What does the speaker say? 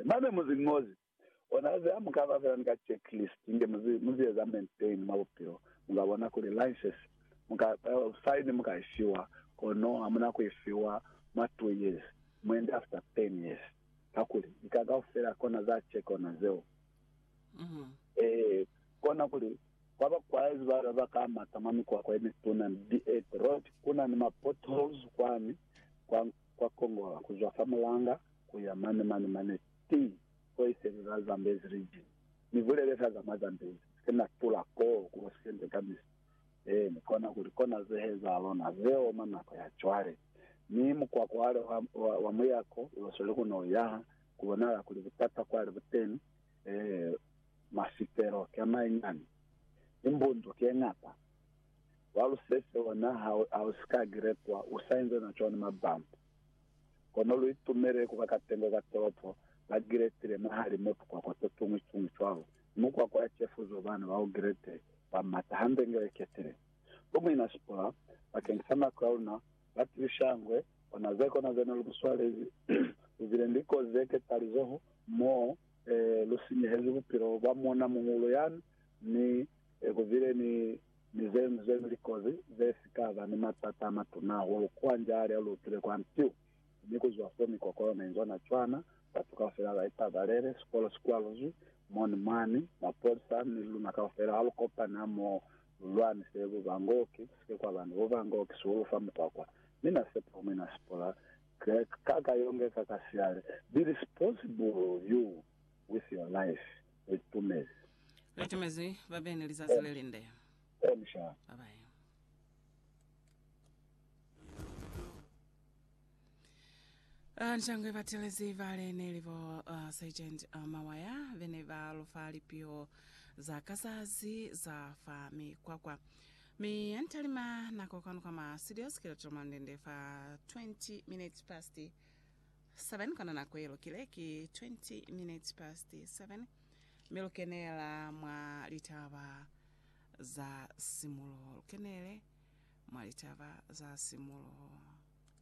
Babe muzi ni muzi, ona ze hamukaba fela ni ka checklist inge muzi muzi eza maintain mwa bupilo, muka bona kuli license muka sign muka ishiwa, kono hamuna ku ifiwa mwa two years, muende after ten years, kakuli lika kaufela kona za check ona zeo. Ee, kona kuli kwa ba kwaezi bale ba ka mata mwa mikwakwa yemituna ni dirt road, kuna ni ma potholes kwani kwa kwa kongola kuzwa fa mulanga ku ya mane, mane, mane ti ko iseli la Zambezi region. Ni bulele ka za mwa Zambezi, ni si ke na tula koo ku Occidente kamisi. Ee, ni kona kuli kona ze heza lona ze oma nako ya cwale. Mi mukwako wale wa, wa, wa muyako ulo sweli ku no yaha, ku bonahala kuli butata kwale bu teni. Ee, mafitelo ki a mañani, ni mbundu ki ye ñata. Wa lusese ona ha, ha u si ka giretwa, u sa inzwe na cwani mabambo. Kono lu itumele ku ba katengo ka tolopo ba Giletile mwahali mo tukwakwa to tuñwi tuñwi cwalo, ni mukwakwa ya cefuzo bana ba ku Gilete ba mata hande inge ba iketile. Bo muina Sipora, bakeñi sa nako ya luna, ba tibisyangwe, ona ze kona ze ne lu mu swalezi, lu bile ni likozi ze ketalizoho, mo lu sinyehezi bupilo bwa muuna muhulu yani, ni Ee, ku bile ni, ni ze ñwi ze ñwi likozi ze si ka ba ni matata a matuna hahulu kwa nja lya lu tile kwa ntiu. Mi ku zwa fo, mikokolo ne inzwa na cwana, batu kaufela ba ipabalele, sikolo si kwaluzwi mo ni mwani, mapolisa, mi luna kaufela ha lu kopani ha mo, lu lwanise bubangooki, ku si ke kwa ba ni bubangooki sihulu fa mukwakwa. Mi na sepa umwi na si pula ka, ka, ka yonge ka, ka siale, Billy Sports, Bull, you with your life. Li tumezi. Li tumezi babeni lizazi le linde. Bon sha. Ba bai. Ah, Nshangwe batelezi bale neli bo ah, Sergeant ah, Mawaya bene ba lofa lipio za kazazi za fa mikwakwa mi antalima nako kanu kama studios kilotiro mandende fa 20 minutes past 7 kona nako ye lukile ki 20 minutes past 7 mi lu kenela mwa litaba za simuloho lu kenele mwa litaba za simuloho.